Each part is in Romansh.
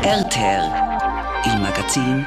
RTL, il magazin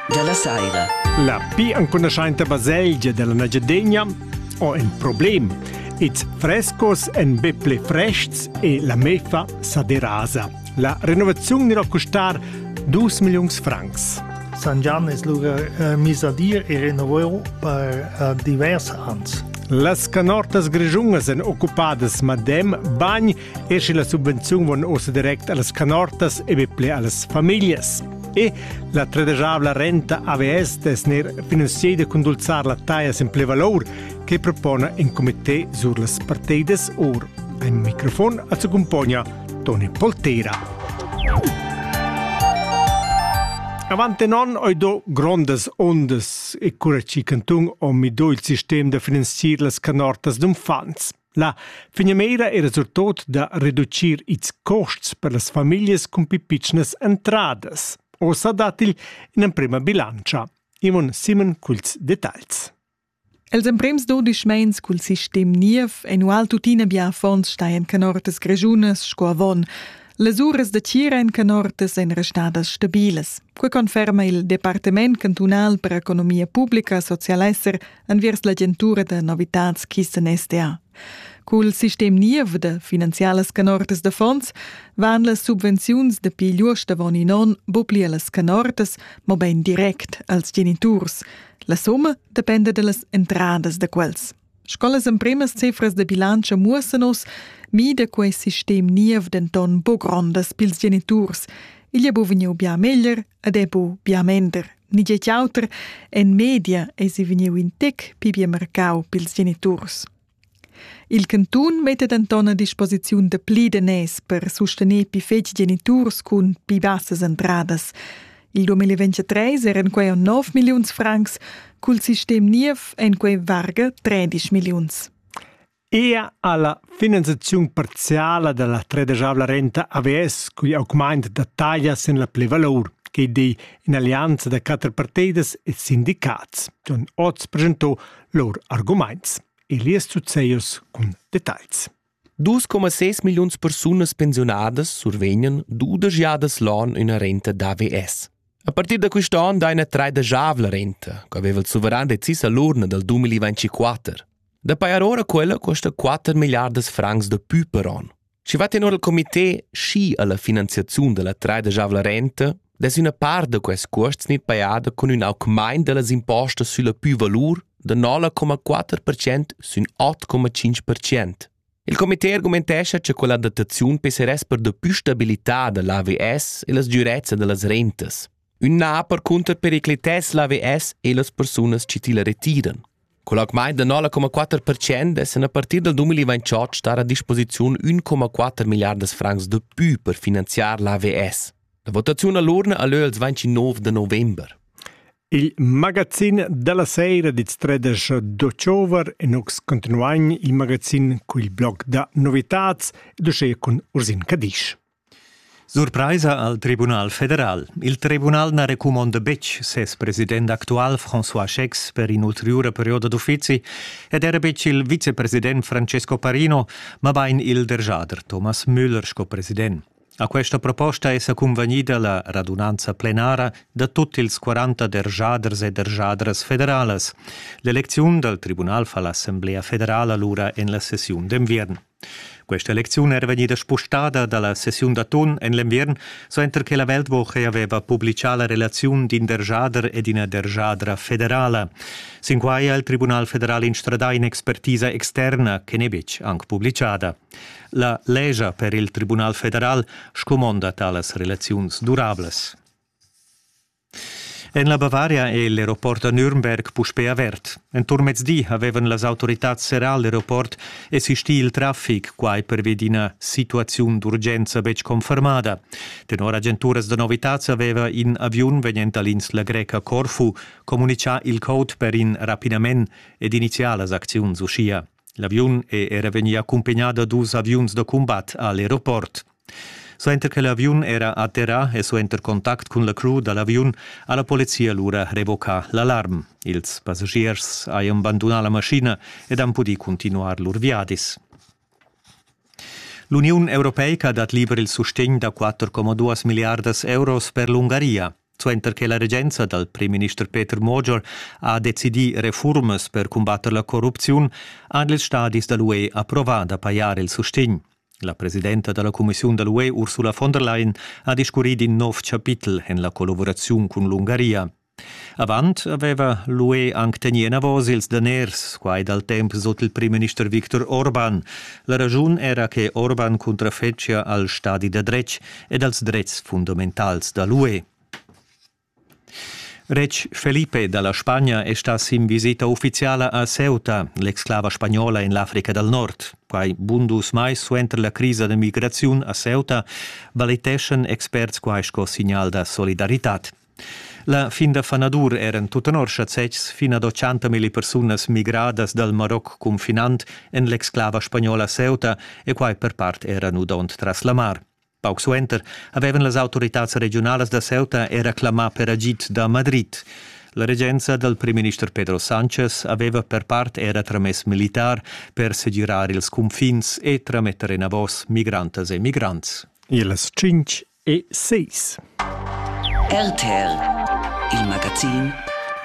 della saira. La pi ancunaschainta baselgia della Nagyadegna ho in problem. Ils frescos en be ple frests e la mefa sa derasa. La renovazione dirà costar 2 milions francs. San Gian es lura eh, mis a dir e renovau per eh, divers ans. Las canortas grigiungas en occupadas madem bagn e sche la subvenziun van ossa direct allas canortas e be ple allas famiglias. E la tredegiabla renta AVS dess ner finanzieda cun dulzar la taia sin ple valor che propona in comité sur las parteidas or. Ein microfon a su compagna Toni Polteira. Avante non oi do grondas ondas e cura ci cantun o mi do il sistem da finanzier las canortas d'unfants. La finamira era surtot da reducir ils costs per las famiglias cun pi pitschnas entradas. Ossa dat igl in'emprema bilantscha. Imon Simon culs detagls. Els emprems dodisch meins cul sistem niev annual tuttina bia affons staien canortas greschunas sco avon. Las uras da tira en canortas ein restadas stabilas. Quei conferma il Departament cantunal per economia publica, socialesser enviers l'agentura da novitads Kisten SDA. Cul sistem niev da finanzialas canortas da fonds van las subvenziuns dapi lur stavon in on bopli allas canortas, mo bein direct als geniturs. La somma dependa dallas entradas da quels. Sco las empremas cifras da bilancio muossan us, mida quei sistem niev denton bo grondas pils geniturs. Igl ha bu vegniu bia meglier Ed è bu bia mender, ni tgei auter, en media eisi vegniu in tec pli bien marcau pils geniturs. Il cantun metta denton a disposiziun de pli de nes per sustener pi fetg geniturs cun pi bassas entradas. Il 2023 eran quei 9 milliuns francs, cul sistem niev en quei varga 13 milliuns. Ea alla finanziaziun parziala dalla tredegiavla renta AVS cugl augmaint da taglia sin la plivalur che dei in'allianza da quatter parteidas e sindicats, han oz presentò lur argumaints. Elias Zuzzeios cun details. 2,6 milliuns persunas pensionadas survegnan dudesch jadas l'on üna renta d'AVS. A partir da quist on daina tredegiavla renta, che aveva il suveran decis all'urna dal 2024. Da pajar ora quella costa 4 milliardas francs da pü per on. Schi va tenor il comité schi alla finanziaziun della traidajavla renta dess üna part da quest cuosts gnit pajada cun ün augmaint dellas impostas sülla pü-valur da 9,4% sün 8,5%. Il comité argumentescha che quella dataziun pesseress per da pü stabilità da l'AVS e las dürezza da las rentas. Ün na percunter periclitess l'AVS e las persunas chi tilla retiran. Col augmaint da 9,4% essan a partir dal 2028 star a disposiziun 1,4 milliardas francs da pü per finanziar l'AVS. La votaziun a l'urna a lö als 29 da november. Il magazin dalla seira dits tredesch d'october e nux continuain il magazin cul blog da novitats ed uschè cun Ursin Cadisch. Surpraisa al Tribunal federal. Il tribunal na recumonda betg ses president actual François Schecks per in'ulteriura perioda d'uffizi ed era betg il vicepresident Francesco Parino, mabain il derschader Thomas Müller sco president. A questa proposta è sa cunvegnida la radunanza plenara da tut ils 40 derschaders e derschadras federalas. L'elecziun dal tribunal fa l'Assemblea federala lura en la sessiun d'enviern. Questa lecziun era vegnida spostada dalla sessiun da ton en l'enviern, suenter che la Weltwoche aveva publicà la relaziun d'in derjader e d'ina derjadra federala. Sin quai ha il Tribunal federal instradà in'expertisa externa che n'è betg anc publicada. La legia per il Tribunal federal scumonda talas relaziuns durablas. En la Bavaria è l'aeroport da Nürnberg puspè avert. Enturn mezdi avevan las autoritads serrà l'aeroport e sistì il traffic, quai pervi d'ina situaziun d'urgenza betg confermada. Tenor agenturas da novitads aveva in aviun vegnent da l'insla greca Corfu communitgà il code per in rapidament ed iniziar las acziuns uschia. L'aviun è era vegnì accumpagnà da dus aviuns da cumbat a l'aeroport. Suenter che l'aviun era atterrà e suenter contact cun la crew da l'aviun ha la polizia lura revocà l'alarm. Ils passagiers hajan bandunà la maschina ed han pudì continuar lur viadis. L'Uniun europeica dat liber il sustegn da 4,2 miliardas euros per l'Ungaria. Suenter che la regenza dal primminister Peter Mauger ha decidì refurmas per cumbatter la corrupziun, han ils stadis da l'UE approvà da pajar il sustegn. La presidenta da la cumissiun da l'UE Ursula von der Leyen ha discurrì d'in nov chapitel en la collavuraziun cun l'Ungaria. Avant aveva l'UE anc tegnì enavos ils daners, quai dal temp sut il primminister Viktor Orban. La raschun era che Orban cuntrafetschia al stadi da dretg e dals dretgs fundamentals da l'UE. Retg Felipe da la Spagna è stà sin visita uffiziala a Ceuta, l'exclava spagnola en l'Africa dal Nord. Quai bun dus mais suenter la crisa d'emigraziun a Ceuta valiteschan experts quai sco signal da solidaritad. La fin da fanadur eran tut tenor schazetgs fin ad 80 milli persunas migradas dal Maroc confinant en l'exclava spagnola Ceuta e quai per part era nudond tras la mar. Pauc suenter avevan las autoritads regiunalas da Ceuta era clamà per agid da Madrid. La regenza dal primminister Pedro Sanchez aveva per part era tramess militar per segirar ils cunfins e trametter enavos migrantas e migrants. Ils tschintg e seis. RTR, il magazin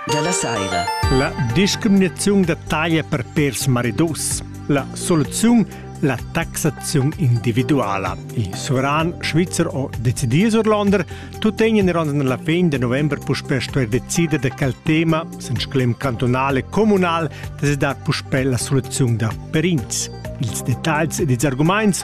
da la saira. La discriminaziun da taglia per pers maridos. La soluziun la taxazione individuale. Il soveran svizzer o decidì sur Londra tuttegna in la fin de novembre puspè stuer decide de quel tema sen sclem cantonale comunal de dar puspè la soluzione da Perins. Ils dettagls ed ils arguments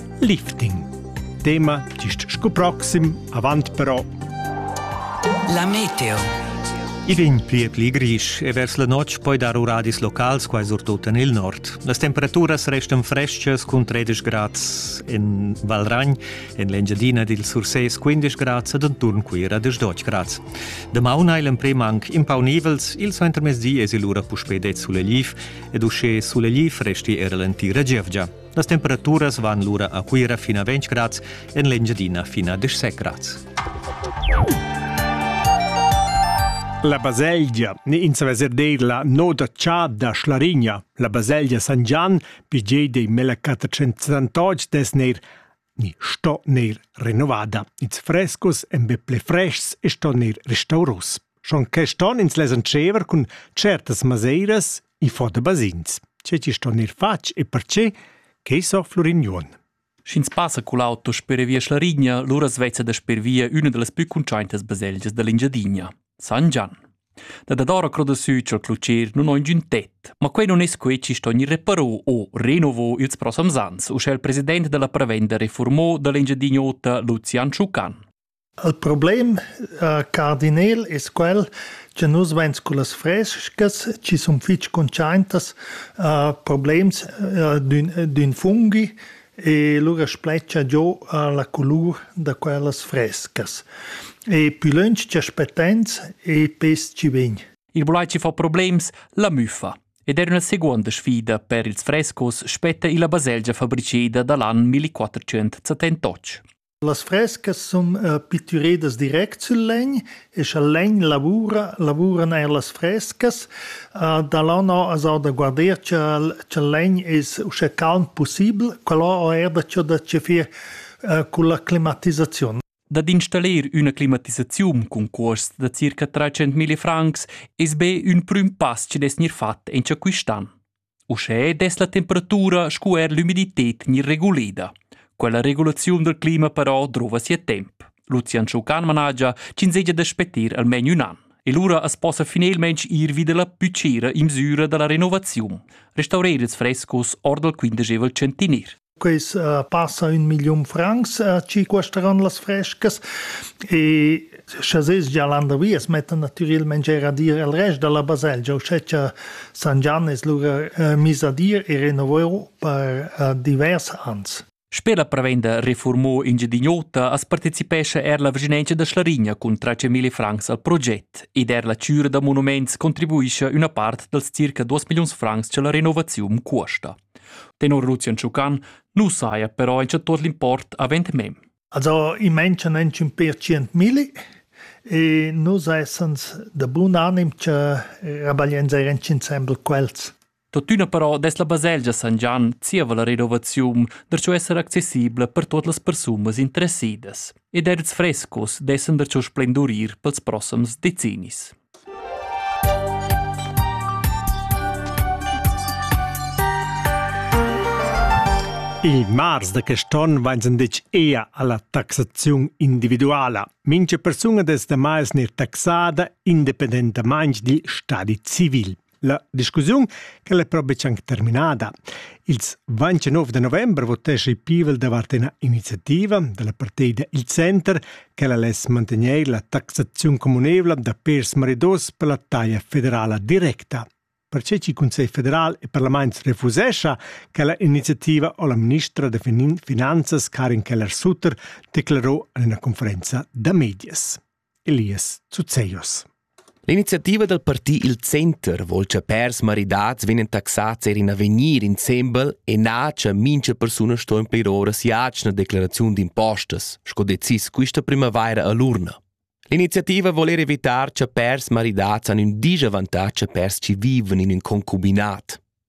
Lifting. Tema gist sco proxim, avant però. La meteo. I vegn pli e pli grisch e vers la notg poi dar uradis locals, quai surtut en il nord. Las temperaturas restan freschas cun 13 grads en Valragn, en l'Engiadina dil Sursés 15 grads ed enturn Cuira 18 grads. Damaun hai l'emprim anc impaunivels, il suentermezdi esi lura puspè det sulegliv ed uschè sulegliv resti era l'entira gievgia. Las temperaturas van lura a Cuira fin a 20 grads, en l'Engiadina fin a 17 grads. La baselgia ni ins veser deir la noda cha da Schlarigna. La baselgia San Gian, pigei dei mela 478 des neir ni sto neir renovada. Ils frescos en be ple freshs e sto neir restauros. Schon quest on ins les entschever cun certas maseiras i fo da basins. Ce ci sto neir fatg e perce che so Florignon. Sch'ins passa cul auto sper via Schlarigna, lura svezza da sper via üna da las plü cuntschaintas baselgias da l'Engiadina. San Gian. Da dadora croda sü ch'el clucher nun ho ingün tet, ma quei non es quei chi sto gnir reparò o renovò ils prossams ans, uschè il president della prevenda reformò dell'Engiadin'Ota Lucian Schucan. Il problem, uh, cardinel, es quel che nus vains cu las frescas, chi sun fich consciaintas uh, problems uh, d'ün funghi, e lura spletgia giò la colur da quellas frescas. E pü lönch cha spettains e pes chi vegn. Il bulaici fa problems, la müffa. Ed era una seconda sfida per ils frescos spetta illa baselgia fabriceda da l'an 1478. Las frescas sun pittüredas direct sül legn e scha il legn lavura, lavuran eir las frescas. Da là no as ho da guarder cha'l cha'l legn es uschè calm pussibel. Quella ho eir daco da chefir culla climatisaziun. Dad installir üna climatisaziun cun cuosts da circa trais centmilli francs es be ün prüm pass chi'd es gnir fat in cha quist an. Uschè dess la temperatura sco er l'umidited gnir reguleda. Quella regulaziun dal clima però drova sia temp. Lucian Schucan managia ch'ins segia da spetir almain ün an. E lura as possa finelmaing ir vi dalla püchira imsüra da la renovaziun. Restaurer ils frescos or dal quindegevel centiner. Quels uh, passa un million francs uh, ci cuesteran las frescas e sche ses gia landervi es metten natüralmente er a dir al rest della baselgia u sceccia San Gian es lura uh, mis a dir e renoveu per uh, divers ans. Sper la prevenda Reformo Engiadin'Ota as partecipescha er la vicinanza da Schlarigna cun 300.000 francs al proget ed er la cura da monuments contribuisce una part dals circa 2 millions francs che la renovazione cuosta. Tenor Lucian Schucan nu saja però il tuot l'import avend mem. Also i manchan inchün per tschient milli e nus essans da bun anim cha rabagliains eir insembel quels. Tuttüna però dess la baselgia San Gian zieva la renovaziun darcho esser accessibla per tuot las persunas interessidas ed edits frescos dessan darcho splendurir pels prossams decennis. Il mars da quest onn vain senditg ea alla taxaziun individuala. Mincha persuna des demais neir taxada independentamaing dil stadi civil. La discussiun quella è però betg anche terminada. Ils 29 da novembre votesce il Pivel davart una iniziativa della partida Il Center che la less mantenere la taxazione comunevole da pers maridos per la taglia federala directa. Perché il Consiglio federal e Parlament refusescia che la iniziativa o la ministra de Finanzas Karin Keller-Sutter declarò in una conferenza da medias. Elias Zuzeglios. L'iniziativa dal parti Il Center vol cha pèrs maridats vegnan taxats eir in avegnir insembel e na cha mincha persuna sto implir ora si'atgna declaraziun d'impostas, sco decis quista primavaira a l'urna. L'iniziativa vol eir evitar cha pèrs maridats han ün disavantatg a pèrs chi vivan in ün concubinat.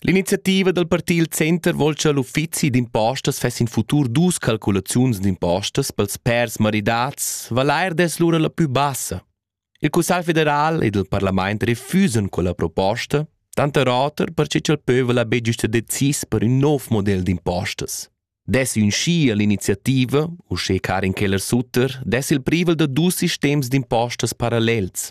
L'iniziativa dal parti il Center vol cha l'uffizi d'impostas fess in futur dus calculaziuns d'impostas pels pers maridats valair dess lura la pü bassa. Il Cussagl federal ed il parlament refusan quella proposta, tanter oter perche ch'el pövel haver güsta decis per ün nov model d'impostas. Dess ün schi all'iniziativa, uschè Karin Keller-Sutter, dess il privel da dus sistems d'impostas parallels.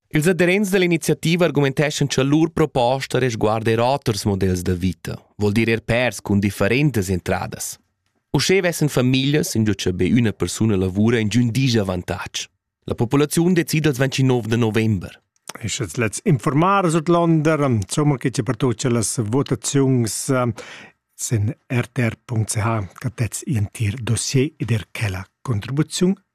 Ils aderents dall'iniziativa argumenteschan cha lur proposta resguarda er oters models da vita, vol dir er pèrs cun differentas entradas. Uschè vessen famiglias, ingio cha be üna persuna lavura, ingiün disavantatg. La populaziun decida als 29 de november. Ist jetzt letzt informar Sudländer, insomma geht ja per tutto las votazions in rtr.ch, che detz in tier dossier ed er quella contribuzione